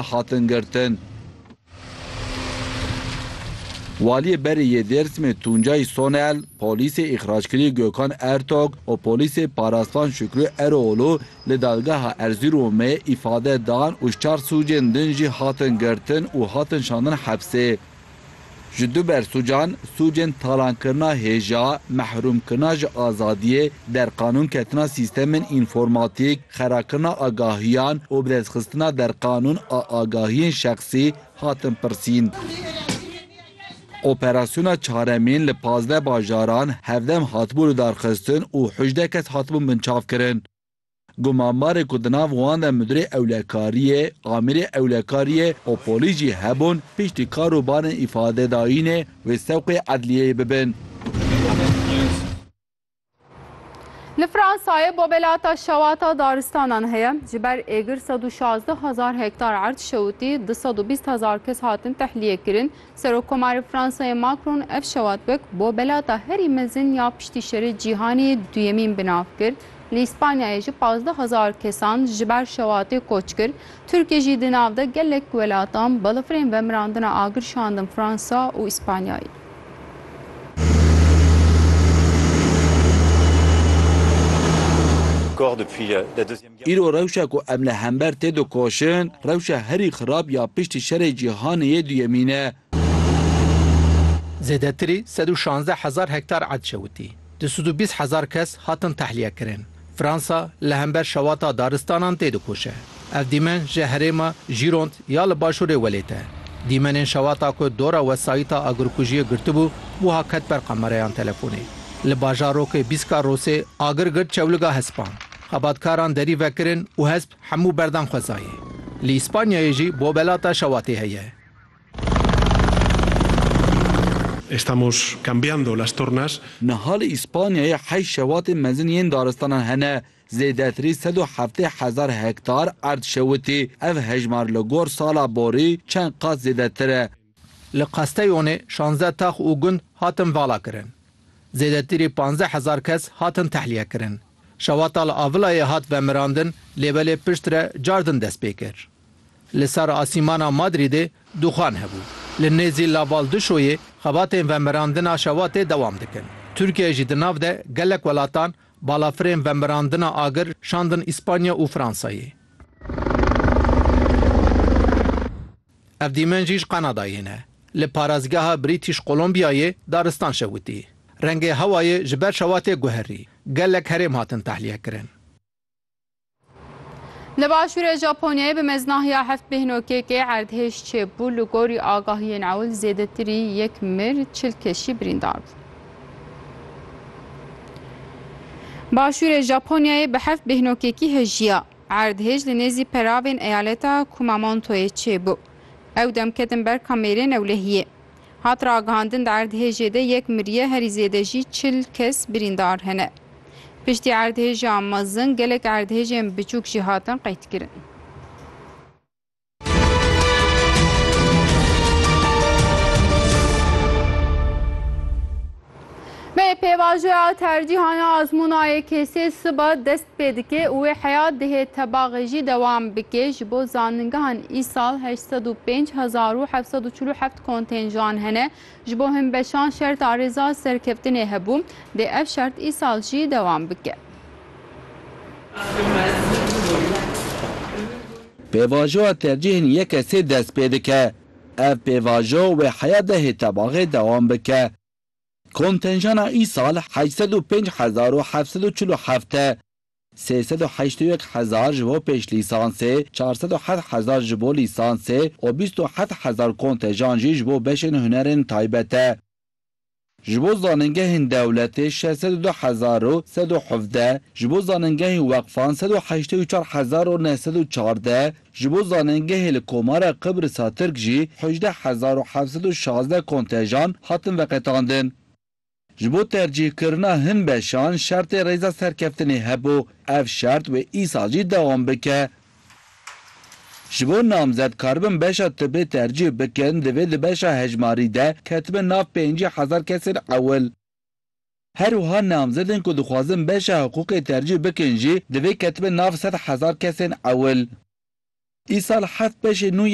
hatin girtin. Waliyê berê yê Dêrsimê Tuncay Sonel, polîsê îxrackirî Gökhan Ertog û polîsê Paraslan Şükrü Eroğlu li Dadgeha Erzîromê îfade dan û ji çar sûcên din jî hatin girtin û hatin şandin hepsê. Ji duber sûcan, sûcên talankirina hêja, mehrûmkirina ji azadiyê, derqanûnketina sîstemên înformatîk, xerakirina agahiyan û birêzxistina derqanûn a agahiyên şexsî hatin pirsîn. Operasyona çaremîn li pazdeh bajaran hevdem hatibû lidarxistin û hûjdeh kes hatibûn binçavkirin. Ku mambarê ku di nav wan de Mudirê Ewlekariyê, Amirê Ewlekariyê û polîs jî hebûn piştî kar û barên îfadedayînê wê sewqê edliyeyê bibin. Li Fransayê bobelata şewata daristanan heye. Ji ber êgir sed û şazdeh hezar hektar erd şewitî, du sed û bîst hezar kes hatin tehliyê kirin. Serokkomarê Fransayê Macron ev şewat wek bo belata herî mezin ya piştî şerê cîhanê duyemîn bi nav kir. Li Îspanyayê jî pazdeh hezar kesan ji ber şewatê koç kir. Tirkiye jî di nav de gelek welatan balafirên vemirandina agir şandin Fransa û Îspanyayê. Îro rewşa ku em li hember tê dikoşin, rewşa herî xirab ya piştî Şerê Cîhanê yê Duyemîn e. Zêdetirî sed û şazdeh hezar hektar erd şewitî, du sed û bîst hezar kes hatin tehliyekirin. Fransa li hember şewata daristanan tê dikoşe. Ev dîmen ji herêma Gironde ya li başûrê welêt e. Dîmenên şewata ku dora wesayîta agirkujiyê girtibû, wiha ket ber qemereyan telefonê. Li bajarokê Bîska Rosê agir girt çewliga hespan. Xebatkaran derî vekirin û hesp hemû berdan xwezayê. Li Îspanyayê jî bobelata şewatê heye. Estamos cambiando las tornas. Niha li Îspanyayê heşt şewatên mezin yên daristanan hene. Zêdetirî sed û heftê hezar hektar erd şewitî. Ev hejmar li gor sala borî çend qat zêdetir e. Li Qasteyonê şazdeh tax û gund hatin valakirin. Zêdetirî panzdeh hezar kes hatin tehliyekirin. Şewata li Avilayê hat vemirandin lê belê pişt re car din dest pê kir. Li ser asîmana Madrîdê dûxan hebû. Li nêzî La Val Duşoyê xebatên vemirandina şewatê dewam dikin. Tirkiyeyê jî di nav de gelek welatan balafirên vemirandina agir şandin Îspanya û Fransayê. Ev dîmen jî ji Kanadayê ne. Li parêzgeha British Columbia-yê daristan şewitî. Rengê hewayê ji ber şewa tê guherî. Gelek herêm hatin tehlîyekirin. Li başûrê Japonyayê bi mezna ya heft bêhnokekê erdhêj çêbû, li gorî agahiyên ewil zêdetirî yek mir, çil kes jî birîndar bûn. Başûrê Japonyayê bi heft bêhnokekî hêjiya. Erdhej li nêzî peravên eyaleta Kumamontoyê çêbû. Ew dem ketin ber kamêrên ewlehiyê. Hat ragihandin di erdhejê de yek miriye herî zêde jî çil kes birîndar hene. Piştî erdhêja mezin gelek erdhejên biçûk jî hatin qeydkirin. Bê pêvajoya tercîhana azmûna YKS'ê siba dest pê dike û wê heya dihê tebaxê jî dewam bike. Ji bo zanîngehan îsal heşt sed û pênc hezar û heft sed û çil û heft kontênjan hene. Ji bo hin beşan şerta rêza serkeftinê hebû, dê ev şert îsal jî dewam bike. Pêvajoya tercîhên yek kesê dest pê dike. Ev pêvajo wê heya dehê tebaxê dewam bike. Kontenjana îsal heşt sed û pênc hezar û heft sed û çil û heft e. sê sed û heşt û yek hezar ji bo pêşlîsansê, çar sed û heft hezar ji bo lîsansê û bîst û heft hezar kontejan jî ji bo beşên hunerên taybet e. Ji bo zanîngehên dewletê şeş sed û du hezar û sed û hevdeh, ji bo zanîngehên weqfan sed û heştê û çar hezar û neh sed û çardeh, ji bo zanîngehê li Komara Qibrisa Tirk jî hewcdeh hezar û heft sed û şazdeh kontejan hatin veqetandin. Ji bo tercîhkirina hin beşan şertê rêza serkeftinê hebû, ev şert wê îsal jî dewam bike. Ji bo namzet karibin beşa tibê tercîh bikin divê di beşa hejmarî de ketibin nav pêncî hezar kesên ewil. Her wiha namzedên ku dixwazin beşa hiqûqê tercîh bikin jî divê ketibin nav sed hezar kesên ewil. Îsal heft beşê nû